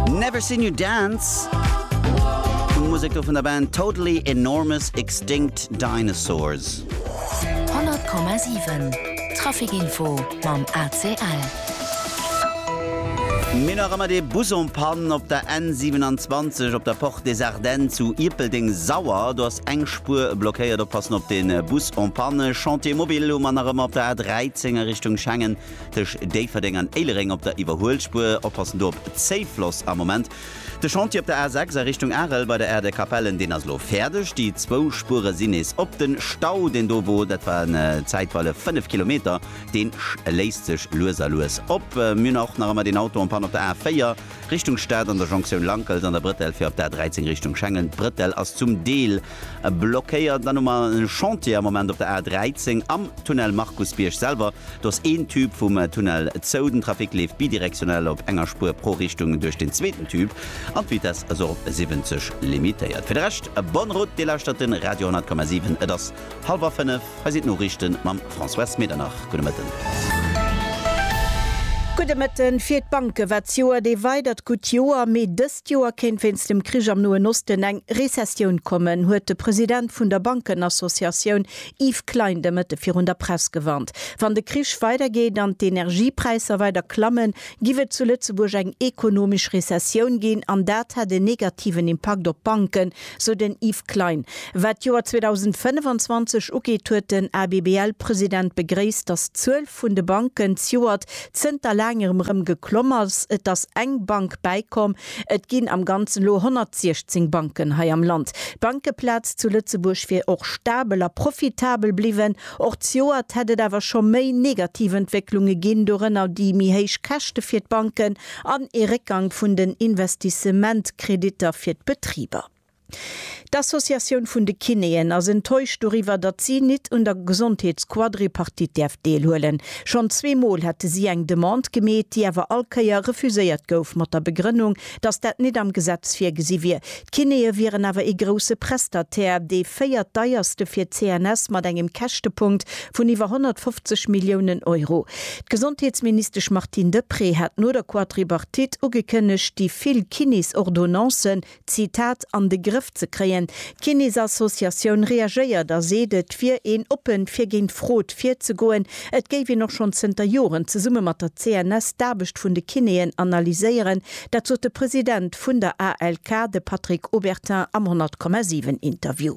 Never Seen You Dance, Musek do vun der Band Totally Enormous Extinct Dinosaurs. 100,7 Traficinfo mam ACL. Mir hunn nach ëmmer dee Bus en Panne op der N 27 op der Porte des Ardennes zu Ierpeldeng-Sauer. Do ass eng Spuer blockéiert. Oppassen op de Bus en Panne. Chantier mobile hu mer nach ëmmer op der A 13 a Richtung Schengen. tëscht Déifferdeng an Éilereng op der Iwwerhuelspuer. Oppassen do op Zéifloss am Moment. De Chantier op der A6 a Richtung Arel bei der Aire de Capellen, deen ass elo fäerdeg. Déi zwou Spuere sinn nees op. Den Stau, deen do wor, dat waren zäitweile 5 Kilometer, deen léisst sech lues a lues op. Mir hunn och nach ëmmer deen Auto en panne op der A4 Richtung Stad an der Jonktioun Lankels an der Bretelle fir op der A13 Richtung Schengen. D'Bretelle ass zum Deel Blockéiert. Dann hu mer e Chantier am Moment op der A 13 am Tunnel Markusbierg selwer. Do ass een Tube vum Tunnel zou. Den Trafic leeft bidirektionell op enger Spuer pro Richtung duerch den zweeten Tube an d'Vitess ass och op 70 limitéiert. Fir de Rescht, bonne route, Dir lauschtert de Radio 10,7. Et ass hallwer fënnef. Hei sinn d'Noriichte mam François Smeternach. Gudde Mëtten. Gudde Mëtten. Fir d'Banke war d'Joer ee weidert gutt Joer, mee dës D'Joer kéint wéinst dem Krich am Noen Osten eng Rezessioun kommen, huet de President vun der Bankenassociatioun Yves Klein de Mëtte virun der Press gewarnt. Wann de Krich weidergeet an d'Energiepräisser weider klammen, giff et zu Lëtzebuerg eng ekonomesch Rezessioun ginn an dat hätt en negativen Impakt op d'Banken, Sou den Yves Klein. Wat d'Joer 2025 ugeet, huet den ABBL-President begréisst, datt d'Zuel vun de Banken zjoert zënter laangerem erëm geklomm ass. Et ass eng Bank bäikomm. Et ginn am Ganzen elo 116 Banken hei am Land. D'Bankeplaz zu Lëtzebuerg wier och stabel a profitabel bliwwen. Och zjoert hätt et awer scho méi negativ Entwécklunge ginn, dorënner déi méi héich Käschte fir d'Banken an ee Réckgang vun den Investissementkreditter fir d'Betriber. D'Associatioun vun de Kinéen ass enttäuscht doriwwer, datt si nit un der Gesondheetsquadripartite däerf deelhuelen. Schonn zwee Mol hätte si eng Demande gemeet, déi awer all Kéier refuséiert gouf mat der Begrënnung, datt dat nit am Gesetz virgesi wier. D'Kinéë wieren awer ee grousse Prestataire, dee véiert deierste fir d'CNS mat engem Käschtepunkt vun iwwer 150 Milliounen Euro. D'Gesondheetsministesch Martine Deprez hat no der Quadribartite ugekënnegt, déi vill Kinéesordonnancen, Zitat, an de Grëff ze kréien. D'Kinéesassociatioun reagéiert a seet, et wier een oppen, fir géint Frod virzegoen. Et géif een och schonn zënter Joren zesumme mat der CNS d'Aarbecht vun de Kinéen analyséieren, Dat sot de President vun der ALK, de Patrick Obertin am 100,7 Interview.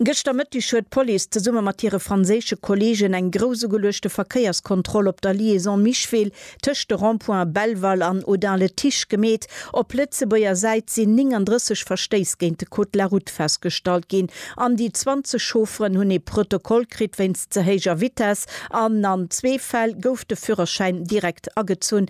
Gëschter Mëtteg huet d'Police zesumme mat hire franséische Kolleegen eng grouss ugeluechte Verkéierskontroll op der Liaison Micheville tëscht de Rond-points Belval an Audun-le-Tiche gemeet. Op Lëtzebuerger Säit sinn 39 Verstéiss géint de Code de la Route festgestallt ginn an déi 20 Chaufferen hunn ee Protokoll kritt wéinst ze héijer Vitess an an zwee Fäll gouf de Führerschäin direkt agezunn.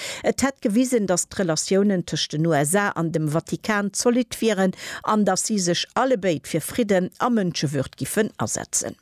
Et hätt gewisen, datt d'Relatiounen tëscht den USA an dem Vatikan zolidd wieren an datt si sech allebéid fir Fridden a Mënschewürd giffen asetzen.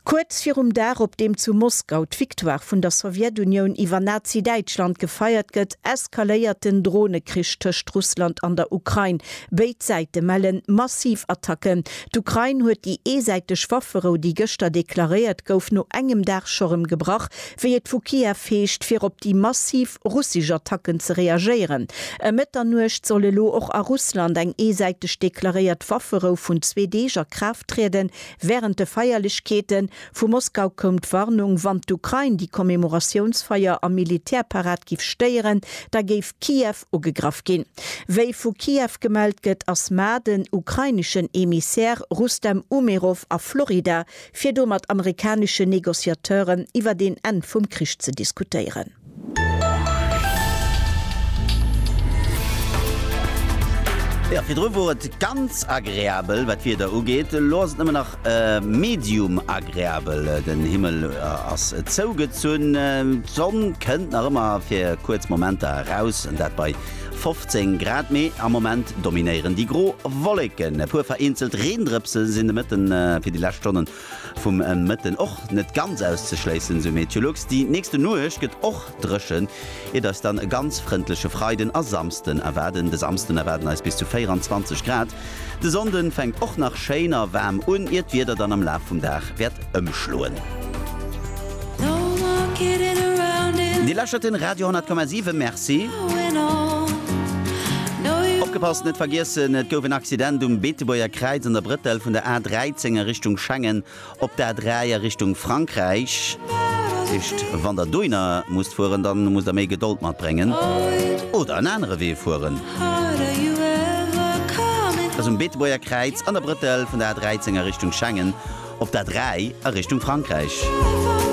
Kuerz virum Dag, op deem zu Moskau d'Victoire vun der Sowjetunioun iwwer Nazi-Däitschland gefeiert gëtt, eskaléiert den Dronekrich tëscht Russland an der Ukrain. Béid Säite melle massiv Attacken. D'Ukrain huet déi eesäiteg Wafferou, déi gëschter deklaréiert gouf, no engem Dag scho rëm gebrach, Wéi et vu Kiew heescht, fir op déi massiv russesch Attacken ze reagéieren. Ëm Mëtternuecht soll elo och a Russland eng eesäiteg deklaréiert Wafferou vun zwee Deeg a Kraaft trieden. Wärend de Feierlechkeete vu Moskau koum d'Warnung, wann d'Ukrain déi Commemoratiounsfeier a Militärparad giff stéieren, da géif Kiew ugegraff ginn. Wéi vu Kiew gemellt gëtt, ass mar den ukraineschen Emissär Rustem Umerov a Florida fir do mat amerikaneschen Negociateuren iwwert een Enn vum Krich ze diskutéieren. Jo, virdru wor et ganz agreabel wat d'Wieder ugeet, elo ass et nëmmen nach medium agreabel. Den Himmel ass zougezunn, d'Sonn kënnt nach ëmmer fir kuerz Momenter eraus, an dat bei 15 Grad, mee am Moment dominéieren déi gro Wolleken. E puer vereenzelt Reendrëpse sinn de Mëtten fir déi lescht Stonne vum Mëtten och net ganz auszeschléissen, sou Meteolux. Déi nächste Nuecht gëtt och dréchen, iert eis dann e ganz frëndleche Freiden a Samsden erwaarden. De Samsden erwaarden eis bis zu 24 Grad. De Sonnden fänkt och nach schéin a waarm un, ier d'Wieder dann am Laf vum Dag wäert ëmschloen. Dir läschert den Radio 10,7. Merci. Opgepasst, net vergiessen, et gouf en Accident um Beetebuerger Kräiz an der Brëttel vun der A 13 a Richtung Schengen. Op der A3 a Richtung Frankräich. Dat heescht, wann Der dohinner musst fueren, da musst Der méi Gedold matbréngen oder en anere Wee fueren. Dat ass um Beetebuerger Kräiz an der Brëttel vun der A13 a Richtung Schengen op der A3 a Richtung Frankräich.